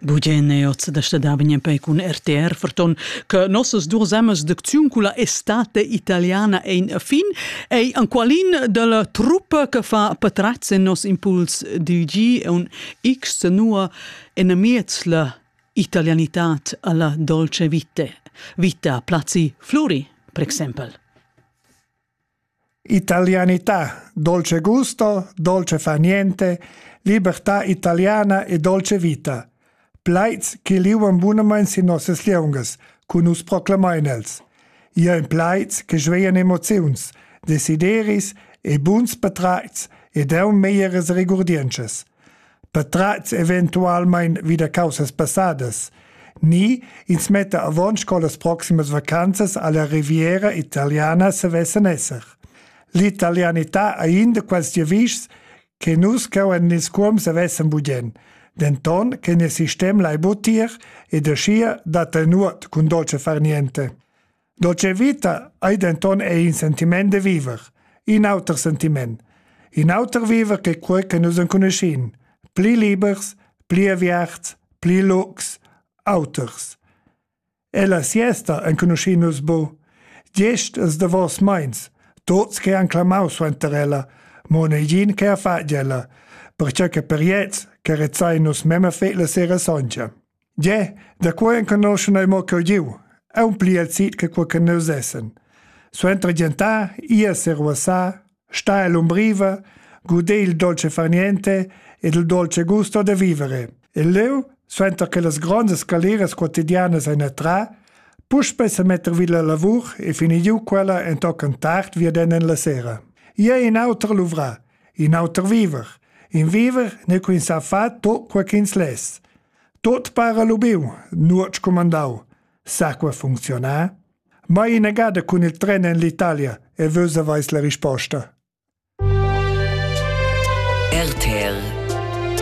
Bugen oz da stadaben pei cun RTR verton che nossas duas amas d'acziun culla estate italiana ein a fin ei an qualin dalla truppa che fa patratz en nos impuls DG un x senua enamiez la italianità alla dolce vite. Vita Plazi Flori, per exempel. Italianità, dolce gusto, dolce fa niente, libertà italiana e dolce vita. Plaids che liuan bunamain sin nossas lieungas, cu nus proclamain els. Ia en plaids che svean emoziuns, desideris e buns patratgs ed eu meières regurdientschas – patratgs eventualmein vi da caussas passadas ni ins metta avon sco las proximas vacanzas alla Riviera italiana savessan esser. L'italianità ha in da quels giavischs che nus cheu en ils cuoms avessan bugen, denton che nies sistem lai butir ed aschia dat ei nuot cun dolce far niente. Dolce vita ei denton ei in sentiment de viver, in auter sentiment, in auter viver che quei che nus enconuschin, pli libers, pli aviarts, pli lux, auters. E la siesta enconuschin nus bu. Gest es de vos meins, tots che han clamau suenter ella, mo negin che ha fatgela, perciò che per jets che rezzai nus memme fe la sera soncha. Ge, da qua enconoschun ei mo cheu giu, aunc pli el sit che quei che nus essen. Suenter gentar, ir seruossar, star ell'umbriva, guder il dolce far niente ed il dolce gusto da vivere. E leu, suenter che las grondas galeras quotidianas ein attra, puspei se metter vid la lavur e fini giu quella entochen tard vieden en la sera. Ia in auter luvra, in auter viver. In viver ne quin sa fa to quaquins les. Tot para lubiu, nuot scumandau, sa qua funcziunar? Mai inagada cun il tren en l'Italia e vus aveis la risposta. RTL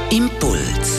Impuls